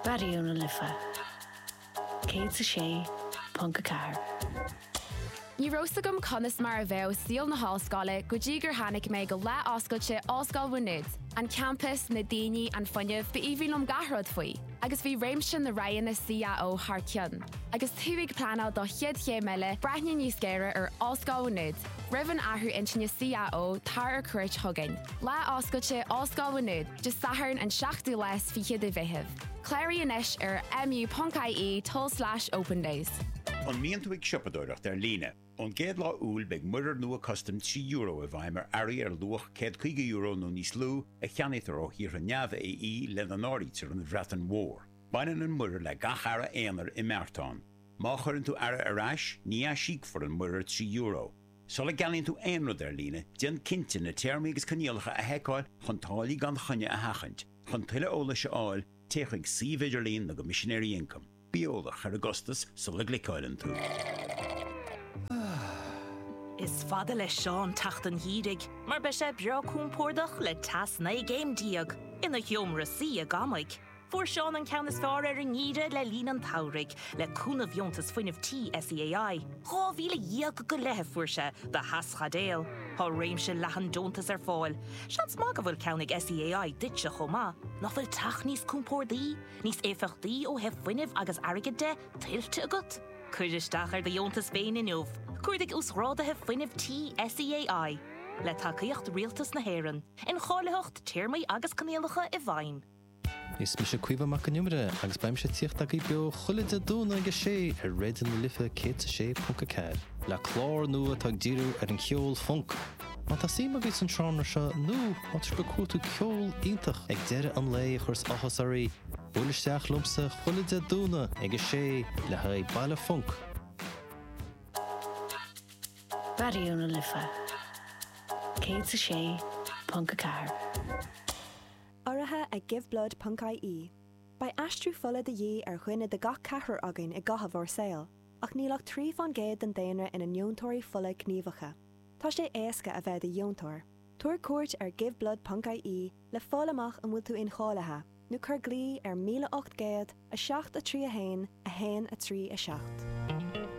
Raidió na Life 106.4. Ní raibh 's agam conas mar a bheadh saol na hollscoile go dtí gur tháinig mé go lá oscailte Ollscoil Mhá Nuad. An campas, na daoine, an fuinneamh, b'aoibhinn liom gach rud faoi. Agus bhí réimse na roghanna CAO thar cionn. Agus tú ag pleanáil do chéad chéim eile, breathnaigh níos géire ar Ollscoil Mhá Nuad. Roimh an athrú intinne CAO, tar ar cuairt chugainn. Lá Oscailte Ollscoil Mhá Nuad. Dé Sathairn an 7ú lá is fiche de Mheitheamh. Cláraigh anois ar mu.ie tul-slais opendays. An mbíonn tú ag siopadóireacht ar líne? Ón gcéad lá Iúil beidh muirear nua custaim trí euro i bhfeidhm ar earraí ar luach céad caoga euro nó níos lú a cheannaítear ó thíortha neamh-AE, lena n-áirítear an Bhreatain Mhór. Baineann an muirear le gach earra aonair i mbeartán. Má chuireann tú earra ar ais, ní aisíocfar an muirear trí euro. Sula gceannaíonn tú aon rud ar líne, déan cinnte na téarmaí agus coinníollacha a sheiceáil chun táillí gan choinne a sheachaint. Chun tuilleadh eolais a fháil, téigh chuig suíomh idirlín na gCoimisinéirí Ioncaim. Bí eolach ar an gcostas sula gcliceáileann tú. Is fada le Seán teacht an gheimhridh mar beidh sé breá compordach le teas 19 gcéim ina sheomra suí i gCorcaigh. Fuair Seán an ceann is fearr ar an ngeimhreadh le linn an tsamhraidh, le cúnamh dheontas fuinnimh tí SEAI. Dhá mhíle dhéag go leith a fuair sé do theaschaidéal. Tá réimse leathan deontas ar fáil. Seans maith go bhfuil ceann ag SEAI duitse chomh maith. Nach bhfuil teach níos compórdaí, níos éifeachtaí ó thaobh fuinnimh agus airgid de, tuillte agat? Cuir isteach ar do dheontas féin inniu. Cuardaigh Uasghráduithe Fuinnimh Tí SEAI. Le tacaíocht Rialtas na hÉireann. Incháilitheacht, Téarmaí agus Coinníollacha i bhfeidhm. Is mise Caoimhe Mac an Iomaire agus beidh mise ag tíocht agaibh beo chuile Dé Domhnaigh ag a sé ar Raidió na Life 106.4, le clár nua atá ag díriú ar an cheol funk. Má tá suim agaibh san seánra seo nó má tá sibh ag cuartú ceol iontach ag deireadh an lae a chuireas áthas oraibh, buail isteach liomsa chuile Dé Domhnaigh ag a sé le haghaidh Baile Funk. Raidió na Life 106.4. urraithe ag Giveblood ponc IE. Beidh aistriú fola de dhíth ar dhuine de gach ceathrar againn i gcaitheamh ár saol, ach níl ach trí faoin gcéad den daonra ina ndeontóirí fola gníomhacha. Tá sé éasca a bheith i do dheontóir. Tabhair cuairt ar Giveblood ponc IE le fáil amach an bhfuil tú incháilithe, nó cuir glao ar 1800 7 3 1 1 3 7.